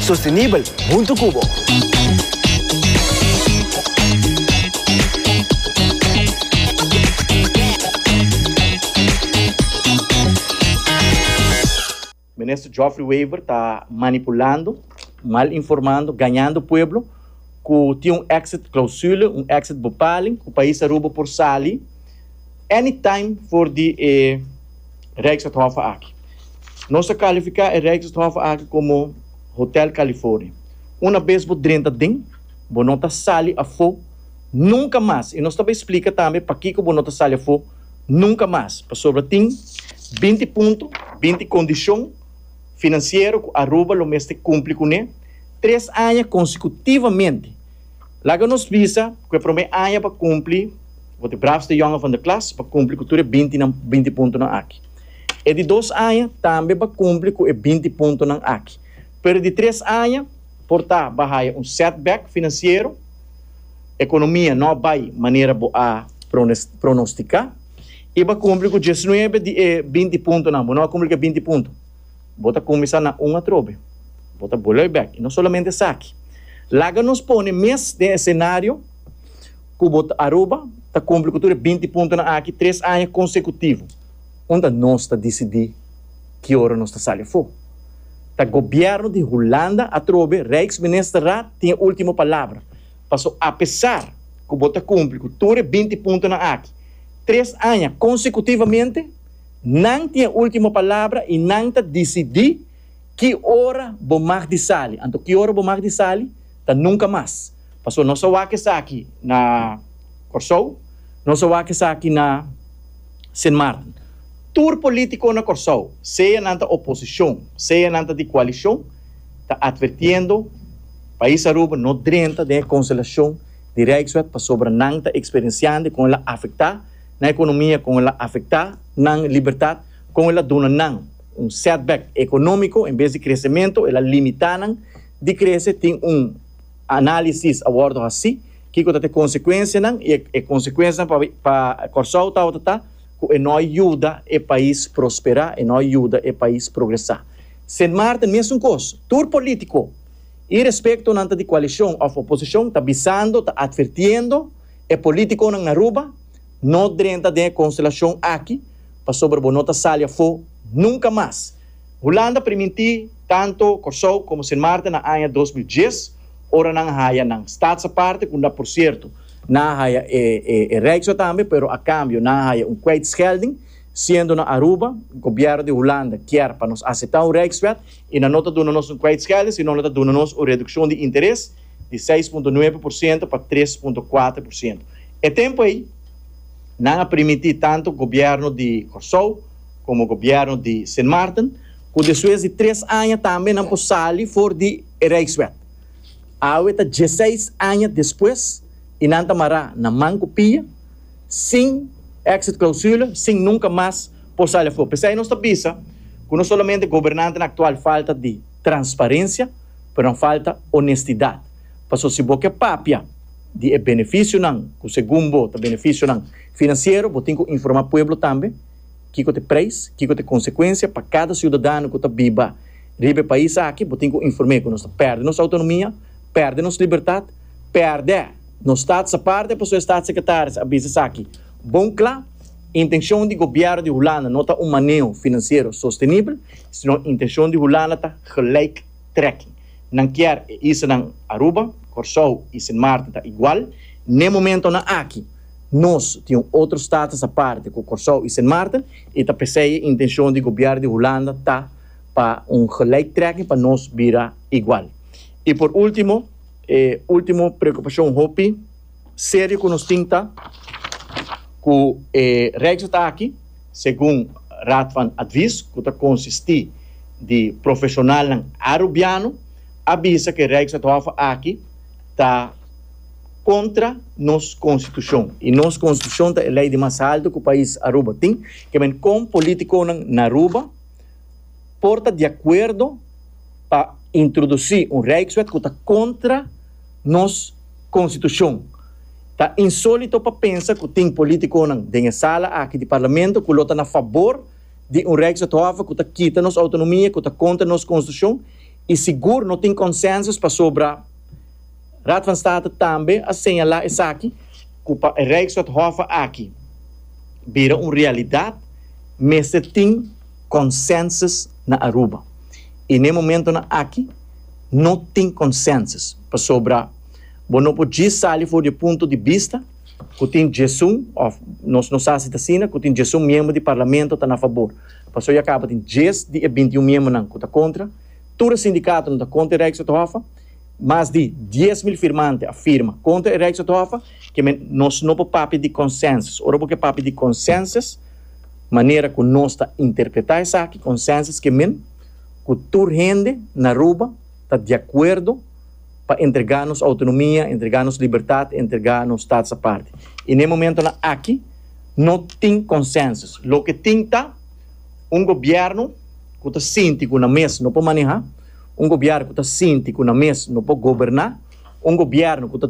Sostenibel huntu cu bo. Minister Geoffrey Wever ta manipulando, mal informando, gañando pueblo cu tin un exit clausule, un exit bepaling cu pais Aruba por sali. Any time for di e Rijksathof aki. Nos a kalifiká e Rijksathof aki komo Hotel California. Una bes bo drenta den, bo no ta sali afó nunka mas. I nos ta bai splika tambe pakiko bo no ta sali afó nunka mas. Pasobra tin binti punto, binti kondishon finansiero ku Aruba lo mester kumpli kuné tres aña konsekutivamente. Laga nos bisa ku e promé aña pa kumpli, bo ta e bravste yòngen van de klas, pa kumpli ku tur e bintinan binti puntonan aki. E di dos aña tambe pa kumpli ku e binti puntonan aki. Pero e di tres aña por ta bo a haya un setback finansiero, ekonomia no a bai manera bo a pronostiká i bo a kumpli ku diesnuebe di e binti puntonan, bo no a kumpli ku e binti punto. Bo ta kuminsá na un atrobe. Bo ta bolei bèk. I no solamente esaki. Laga nos pone mes den esenario ku bo ta Aruba ta kumpli ku tur e binti puntonan aki tres aña konsekutivo. Unda nos ta disidí ki ora nos ta sali afó? Ta gobièrnu di Hulanda atrobe, Rijksministerraad tin e último palabra. Paso apesar ku bo ta kumpli ku tur e binti puntonan aki tres aña konsekutivamente, Nan tin e ultimo palabra i nan ta disidí ki ora bo mag di sali. Anto ki ora bo mag di sali ta nunka mas. Pasobra nos a wak esaki na Kòrsou, nos a wak esaki na Sint Maarten. Tur polítiko na Kòrsou, sea nan ta oposishon, sea nan ta di koalishon, ta atvertiendo pais Aruba no drenta den e konselashon di Rijkswet pasobra nan ta eksperensiando i kon el a afektá na economia con el a afecta nan libertad, con el a duna nan un setback economico en bes di crecemento el a limita nan di crece, tin un analisis a wordo haci kico ta ta e consecuencianan y e consecuencianan pa pa Corsou tabata ta cu e no a yuda e pais prospera, e no a yuda e pais progresa. Sint Maarten mesun cos, tur politico y respecto nan ta di coalicion of oposicion ta bisando, ta advirtiendo, E politiconan na Aruba no drenta den e constelacion aki pasobra bo no ta sali afo nunca mas. Hulanda permiti tanto Corsou como Sint Maarten na aña dos mil dies ora nan a haya nan staats aparte cu na por cierto nan a haya e Rijkswet tambe pero a cambio nan a haya un kwijtschelding siendo na Aruba gobierno di Hulanda kier pa nos acepta un Rijkswet y nan no ta duna nos un kwijtschelding sino nan ta duna nos un reduccion di interes di seis punto nuebe por siento pa tres punto kuater por siento. E tempu ei nan a permití tantu gobièrnu di Kòrsou komo gobièrnu di Sint Maarten ku despues di tres aña tambe nan por sali for di e Rijkswet. Awe ta dieseis aña despues i nan ta mará na man ku pia, sin exit-clausule, sin nunka mas por sali afó. P'esei nos ta bisa ku no solamente gobernantenan aktual falta di. transparencia pero nan falta honestidad paso si bo ke papia di e beneficionan cu segun bo ta beneficionan financiero bo tin cu informa pueblo tambe kico ta e prijs kico ta e consecuencia pa cada ciudadano cu ta biba riba e pais aki bo tin cu informe cu nos ta perde nos autonomia perde nos libertad perde nos staat sa parde paso e staat secretaris a bisa esaki Bon kla, intenshon di gobièrnu di Hulanda no ta un maneo finansiero sostenibel, sino intenshon di Hulanda ta gelijk trekking. Nan kier e islanan Aruba, Kòrsou i Sint Maarten ta igual. N'e momentonan aki nos tin un otro status aparte ku Kòrsou i Sint Maarten i ta p'esei e intenshon di gobièrnu di Hulanda ta pa un gelijk trekking pa nos bira igual. I por último, e último preokupashon hopi. Serio cu nos tin ta cu e Rijksraad aki, segun Raad van Advies cu ta consisti di profesionalnan Arubiano, a bisa cu e Rijksraadhof aki ta contra nos Constitucion. Y nos Constitucion ta e ley di mas halto cu pais Aruba tin. Ke men con politiconan na Aruba por ta di acuerdo pa introduci un Rijkswet cu ta contra. Nos Konstitushon. Ta insólito pa pensa ku tin polítikonan den e sala aki di parlamento ku lo ta na fabor di un Rijkswetthof ku ta kita nos outonomia, ku ta kontra nos Konstitushon i sigur no tin konsènsus pasobra Raad van State tambe a señalá esaki, ku pa e Rijkswetthof aki bira un realidat mester tin konsènsus na Aruba i n'e momentonan aki, No tin consensus pasobra bo no por djis sali for di e punto di bista cu tin djesun, of nos no sa si ta asina, cu tin djesun miembro di Parlamento ta na fabor. Pasobra ya caba tin djes di e binti un miembronan cu ta contra. Tur e sindicatonan ta contra e Rijkswethof. Mas di dies mil firmante a firma contra e Rijkswethof. Kiemen nos no por papia di consensus. Ora bo ke papia di consensus, manera cu nos ta interpreta esaki, consensus, kiemen, cu tur hende na Aruba ta diacuerdo pa entrega nos autonomia, entrega nos libertad, entrega nos stads aparte. Y n'e momentonan aki no tin consensus. Loke tin ta un gobierno cu ta sinti cu nan mes no por maneha, un gobierno cu ta sinti cu nan mes no por goberna, un gobierno cu ta.